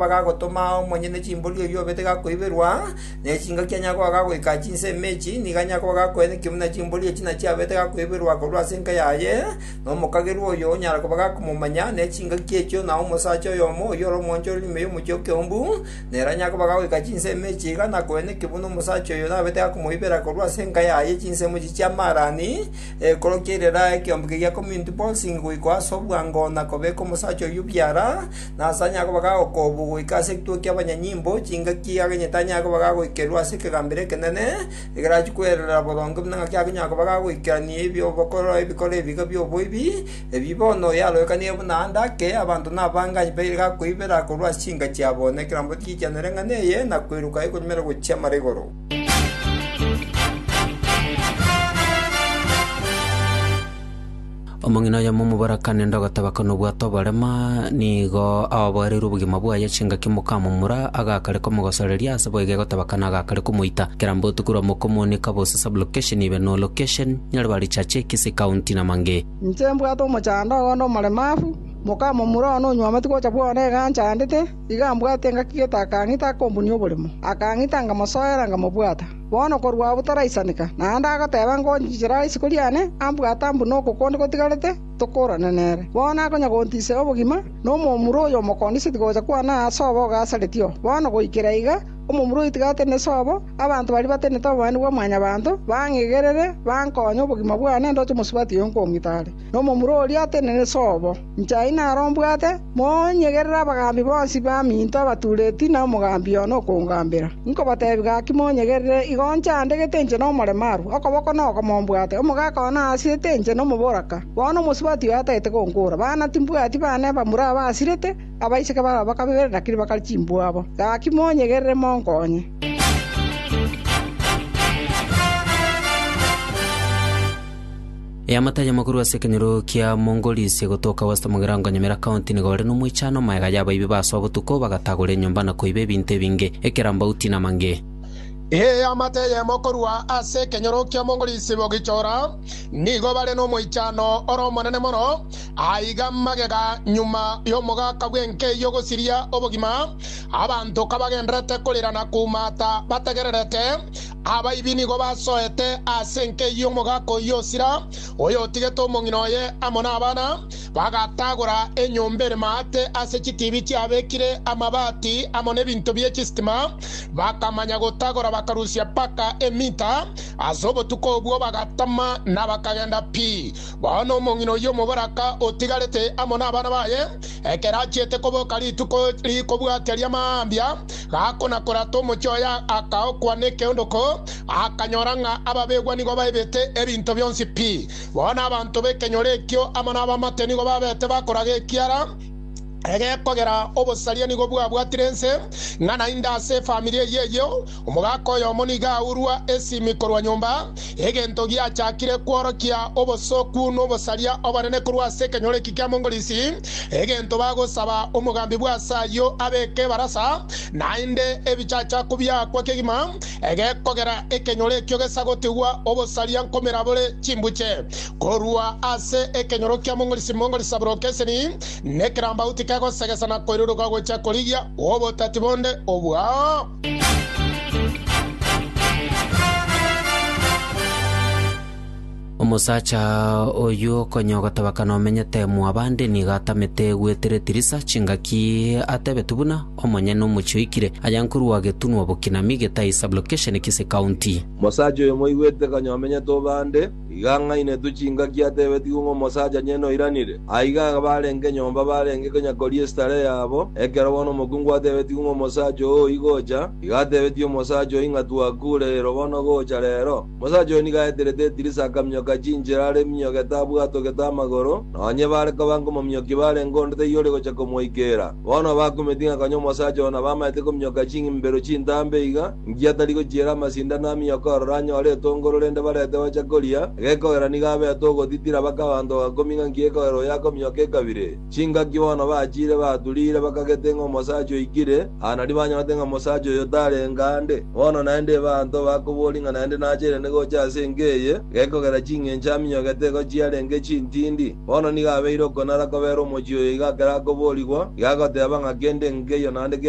Bagagotoma omonyene chimbori oyio obete gakoiberwa, ne chingaki anyakoa gagoika chinsa emechi, nigo anyakoa gakoena ekiombe na chimbori echi nachio abete gakoiberwa korwa ase enka yaye, na omokagerwa oyo onyara koba gakomomanya, ne chingaki echio, na omosacha oyomo oyio ore omwanchorori ime y'omochie okeumbu, nere anyakoba gagoika chinsa emechi iga, na koena ekiombe na omosacha oyo nabete gakomoibera korwa ase enka yaye chinsa emechi chia amaarani, ekorokia erera ekeombe keria community bolsing goika ase obwango na kobeka omosacha oyio biara, Nase anyare koba gagokobwa goika ase egituko ki'abanyanyimbo, chingaki aganyete anyare koba gagoikerwa ase ekegambero ekenene, ekero achia kwererera boronge buna ng'aki agonyara koba gagoikerania ebi'obokoro ebikoro ebiga bi'oboibi, ebi bono yaroekanire buna aande ake, abanto nabange aye baire gakoibera korwa ase chinka chiabo, na ekerambe tigichianera eng'ana eye, na kweruka ekoremera gochia mara igoro. Omong'ina oyomo omoborakani ende ogatebaka nobwate oborema, nigo aoboreirwe obogima bwaye chingaki mokamomura, agakare komogosoreria, ase boigo egotebaka nagakare komoita. Kera mbotuko rwa mokomonika bose sublocation ibe no location, nyare ba richache ekesi ekaunti na mange. Inche mbwate omochando ogonde omoremafu, mokamomura one onyuometi gocha bwone iga anchandete, iga mbwate engaki gete akang'ita akombunia oboremo, akang'ita ngamosoera ngamobwata. Bono korwa abwo toraisaneka, naende agoteba, 'Ngonchichera ase isiko riane, ambwate ambune oko konde gotigarete, tokorane nere. Bono nakonya gontiisera obogima, na omomura oyo omokondiseti gocha kwane aa sobo ogasareti oo. Bono goikera iga, omomura oyo otiga atenene sobo, abanto baria batenenete obobaani bwa Mwanyabaanto, bang'egerere, bankonye, obogima bwane ndoche mosubati oyo nkomwita are, na omomura oria atenene sobo. Nchai naro mbwate, monyegerere abagaambi bonsi baminto abatureti na omogaambi one okongaambera. Inkobateebia gaki monyegerere, igo nchandegete inche nomoremo arua, okoboko noko mombwate, omogaka one aasirete inche nomoboraka. Bono omosubati oyo atagete gonkora, bana timbwati bane bamura abasirete, abaiseke babo bakabere na kiribaka chimbuabo. Gaki monyegerere monkonye. Eamate ayamo korwa ase ekenyoro kia Mongolisi gotoka west mogirango Nyamira County nigo ore nomoichano maega y'abaibi basoa botuko bagatagora enyomba na koiba ebinto ebinge, ekerambauti na mange. Eamate eyemo korwa ase ekenyoro kia Mongolisi bogichora nigo bare nomoichano ore omonene mono aiga magega nyuma y'omogaka bw'enkeyio gosiria obogima abanto kabagenderete korira na kumata bategererete Abaibi nigo basoete aase enkei y'omogaka oyio osira, oyotigete omong'ina oye amo nabana, bagatagora enyomba ere maate ase chitiibi chiabekire amabaati amo nebinto bie chisitima, bakamanya gotagora bakarusia mpaka emita. Ase obotuko obwo bagatama na bakagenda pi. Bono omong'ina oyio omoboraka otigarete amo nabana baye, Ekero achiete koboka rituko rikobwatia ria mambia, gako na korata omochie oye akaokwa nekeondoko, akanyora ng'a ababegwa nigo baibete ebinto bionsi pi. Bono abanto b'ekenyoro ekio amo nabamate nigo babete bakoraga ekiara egekogera obosaria nigo bwabwatire ense ng'a naende ase efamiri eyio eyio. Omogaka oyomo nigo aurwa esimi korwa nyomba, egento giachakire kworokia obosooku n'obosaria obonene korwa ase ekenyoro eki kia Mongolisi, egento bagosaba omogambi bw'ase ayio abeke ebarasa, naende ebichachako biaakwa kegima egekogera ekenyoro ekio gesagotigwa obosaria nkomera bore chimbuche korwa ase ekenyoro kia Mongolisi. Mongolisi aboroke esemi nekerambauti kegosegesa na koiruruka gochia korigia obotati bonde obwao. Omosacha oyio konya ogotabakana omenyete mwabande nigo atamete gwetire Tirisa chingaki atebeti buna omonyene omochi oikire aya nkorwa getunwa bokinami getae sublocation kise county. Mosacha oyo moigwete konya omenyete obande. Iga ang'ainetwe chingaki atebetigwe ng'a omosacha nyene oiranire. Aiga abarenge nyomba barenge konya koria esitare yabo, ekero bono omokungu atebetigwe ng'a omosacha oo igocha, iga atebetie omosacha oyio ng'a Twakure ero bono gocha rero. Omosacha oyo nigo aeterete edirisa akaminyoka chinchera are minyogete abwatogete amagoro, nonye bare koba nkomominyokia barenge onde taiyo ore gocha komoikeera. Bono bakumeti ng'a konya omosacha oo nabamaete kominyoka ching'imibero chintambe iga, ngiya tari gochiera amasindano aminyoke ororo anyore etongo rorende barete gocha koria, gekogera nigo abete ogotitira baka abanto bagakumia ng'a nki ekogera oyo akominyoka ekabire. Chingaki bono bachire baturire bakagete ng'a omosacha oikire aa nario banyorete ng'a omosacha oyo tarenga ande. Bono naende ebaanto bakoboria ng'a naende nacheire ande gocha ase enka eye, gekogera ching'encho aminyoke teko chiarenge chintindi. Bono nigo abeire okonara kobera omochie oyo iga akere akoboorigwa, iga agoteeba ng'a kende nkeiyo naende kende,